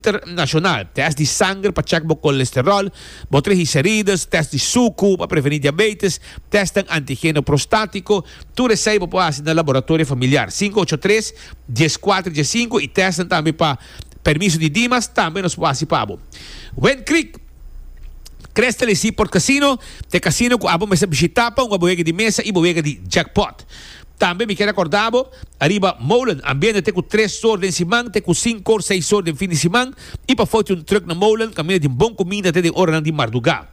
Dokter Nashonal, tèst di sanger pa chèk bo kolesteròl, bo trigiserides, tèst di suku pa prevení diabeites, tèsten antigeno prostátiko. Tur esei bo por hasi na Laboratorio Familiar, sinku ocho tres, dies kuater, dies sinku i tèsten tambe pa permiso di Dimas tambe nos por hasi pa bo. Wind Creek Crest LIC Port Casino, t'e casino ku abo mester bishitá pa hunga bo wega di mesa i bo wega di jackpot. Tambe mi kier a korda bo, ariba molen ambiente te ku tres sor den siman, te ku sinku or seis sor den fin di siman, i pa foti un trùk na molen kaminda tin bon kuminda te den oranan di mardugá.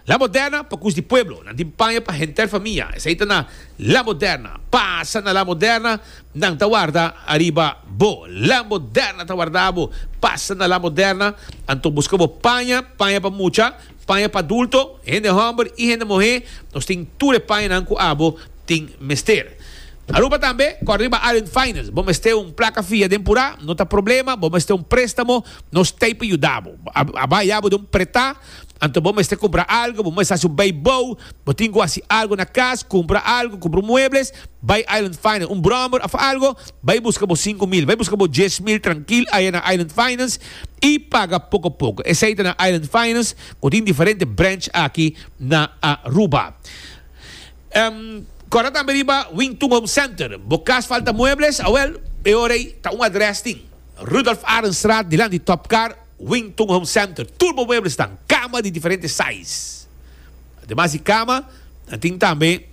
La Moderna pa kus di pueblo, nan tin paña pa henter famia, esei ta na La Moderna, pasa na La Moderna, nan ta warda ariba bo, La Moderna ta warda bo, pasa na La Moderna, anto buska bo paña, paña pa mucha, Paña pa adulto, hende hòmber i hende muhé, nos tin tur e pañanan ku abo tin mester. Aruba tambe, kòrda riba Island Finance, bo mester un plaka fia den Purá, no ta problema, bo mester un préstamo, nos t'ei pa yuda bo. A bai abo den un pretá, anto bo mester kumpra algu, bo mester hasi un bai bou, bo tin ku hasi algu na kas, kumpra algu, kumpra un muebles, bai Island Finance, un bròmber òf algu, bai buska bo sinku mil, bai buska bo dies mil trankil aya na Island Finance, i paga poko poko. Esei ta na Island Finance ku tin diferente branch aki na Aruba. Kòrda tambe riba Wingtun Home Center. Bo kas falta muebles? Awèl, e ora ei ta un adrès tin. Rudolf Arendstraat dilanti di Top Car, Wingtun Home Center. Tur bo muebles tan. Kama di diferente size. Ademas di kama, nan tin tambe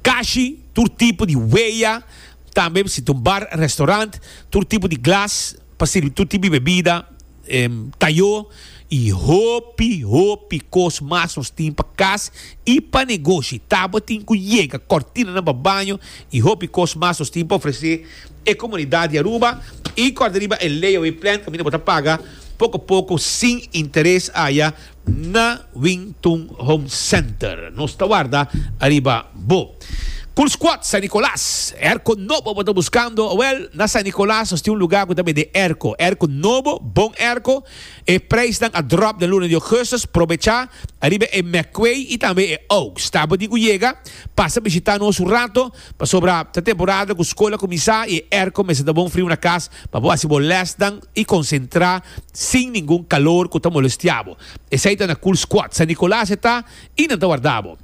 kashi tur tipo di weya. Tambe bisita un bar, restaurant, tur tipo di glas pa sirbi tur tipo di bebida, tayo y hopi hopi cos mas nos tin pa cas y pa negoshi. Tabatin cu yega, cortinanan pa baño y hopi cos mas nos tin pa ofrece e comunidad di Aruba. Y corda riba e layaway plan, caminda bo ta paga poco poco sin interes aya. Na Wing Tun Home Center nos ta warda ariba bo. Cool Squad San Nicolas, Airco nobo bo ta buscando? Awel, na San Nicolas nos tin un lugar cu ta bende airco. Airco nobo, bon airco. E prijsnan a drop den luna di augustus. Probecha! Ariba e McQuay y tambe e Oaks. Tabata di cu yega, pasa bishita nos un rato. Pasobra ta temporada ku skol a kuminsá i e airco mester ta bon friu na kas pa bo hasi bo lèsnan i konsentrá sin ningun kalor ku ta molestiá bo. Esei ta na Cool Squad, San Nicolas e ta i nan ta warda bo.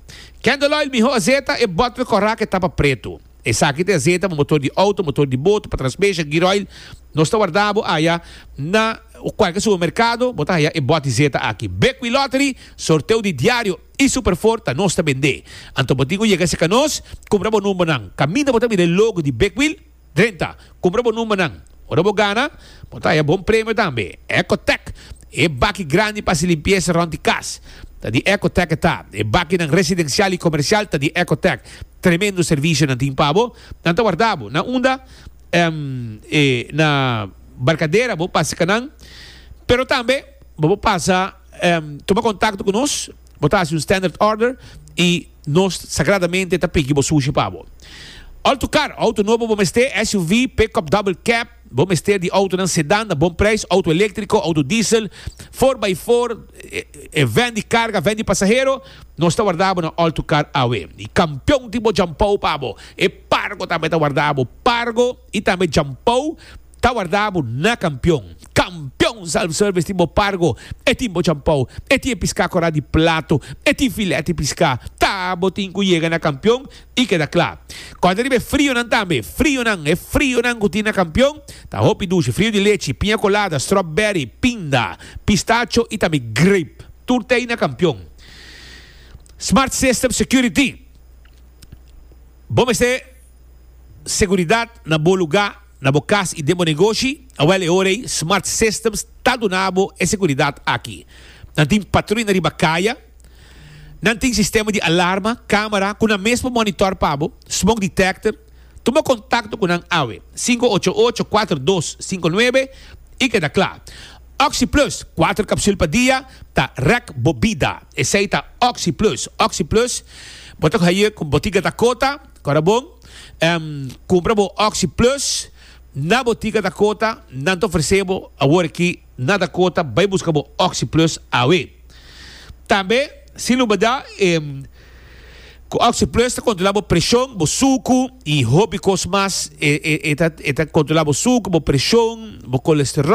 Candle Oil Miho Azeta e bòtl kòrá ku e tapa pretu. Esaki ta e azeta pa motor di outo, motor di boto, pa transbesha, gear oil. Nos ta warda bo aya na kualke supermerkado, bo ta haya e bòt di zeta aki. Bekwilottery, sorteo di diario. I super for ta nos ta bendé. Anto bo tin un yega seka nos, kumpra bo numbernan. Kaminda bo ta mira e logo di Big Wheel, drenta, kumpra bo numbernan. Ora bo gana, bo ta haya bon premio tambe. Ecotec, e baki grandi pa hasi limpiesa rond di kas, ta di Ecotec e ta. E bakinan residencial i comercial ta di Ecotec. Tremendo servicio nan tin pa bo. Nan ta warda bo na unda, em, e na barcadera bo pasa seka nan, pero tambe bo por pasa. Tuma kontakto ku nos, bo ta hasi un standard order i nos sagradamente ta pigi bo sushi pa bo. Auto Car, Auto nobo bo mester, SUV, Pickup Double Cab, bo mester di autonan sedan na bon prijs, auto eléktriko, auto diesel, four by four, e vèn di karga, vèn di pasahero, nos ta warda bo na Auto Car awe. Di kampion tin bo djampou pa bo. E Pargo tambe ta warda bo. Pargo i tambe djampou. Ta warda bo na kampion. Kampion Self Service tin bo pargo, e tin bo champou, e tin e piská korá di plato, e tin filé di piská. Ta bo tin ku yega na kampion i keda kla. Kòrda riba e frionan tambe. Frionan, e frionan ku tin na kampion ta hopi dushi, frio di lechi, piña kolada, strawberry, pinda, pistacho i tambe grape. Tur t'ei na kampion. Smart System Security Bo mester. Seguridat na bo lugá, na bo kas i den bo negoshi? Awèl e ora ei Smart Systems ta duna bo e seguridat aki. Nan tin patrui na riba kaya, nan tin sistema di alarma, kámara ku nan mes por monitor pa bo, smoke detector. Tuma kontakto ku nan awe, sinku ocho ocho kuater dos sinku nuebe i keda kla. Oxi Plus, kuater kapsül pa dia, ta rèk bo bida. Esei ta Oxi Plus. Oxi Plus bo ta haye ku Botica Dakota. Ora bon cumpra bo Oxi Plus na botica Dakota, nan ta ofrece bo awor aki na Dakota, bay busca bo Oxi Plus awe. Tambe, sin lubada, cu Oxi Plus ta controla bo presion, bo sucu y hopi cos mas. E ta controla bo sucu, bo presion, bo colesterol.